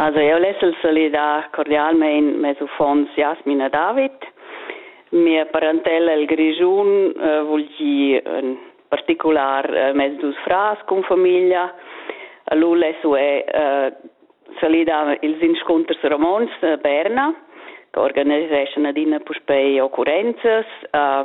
Also eu less el salidar cordialmein mes uffants Jasmin e David. Mia parentella el Grischun eh, vul gir in particular eh, mes dus frars cun famiglia. Lu less ue eh, salidar ils inscunters romontsch a Berna, che organiseschan adina puspei occurrenzas. Eh,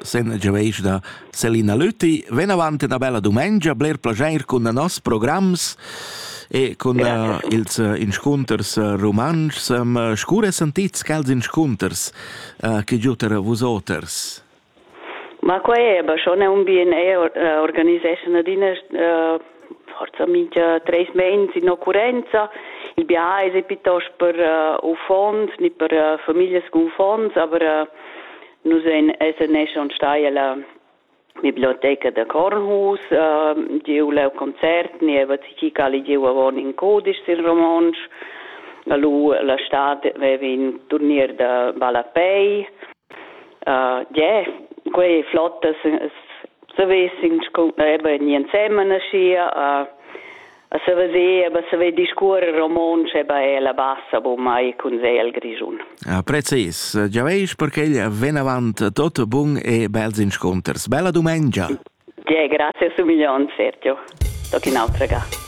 Sen giaveischna Selina Lüthi venavant üna bella dumengia, bler plaschair cun noss programs e cun yeah. uh, ils uh, inscunters uh, rumantschs. Um, scure sentits quels inscunters uh, che giuter vus oters? Ma qua è, aber schon un bien e uh, organiseschna adina uh, forza mincha treis meins in occurrenza. Il biais è piuttosto per uh, uffants, nicht per uh, familias con uffants, aber uh, Nus ein seneschon stai ella biblioteca da Kornhus, uh, giu leu concert, nieva tgi cali giu avon in codisch sin romontsch. Lu la stad vevi in turnier da ballapei. Uh, yeah, quei flotta savis in eba ni ensemen aschia. Uh, a saver aber saver discuorer romontsch e ba la bassa bu mai cun sei al grischun. Ah, precis, già veis perché ven avant tot bun e bels insconters. Bella dumengia. Ja, grazie su milion, Sergio. Toc in altra ga.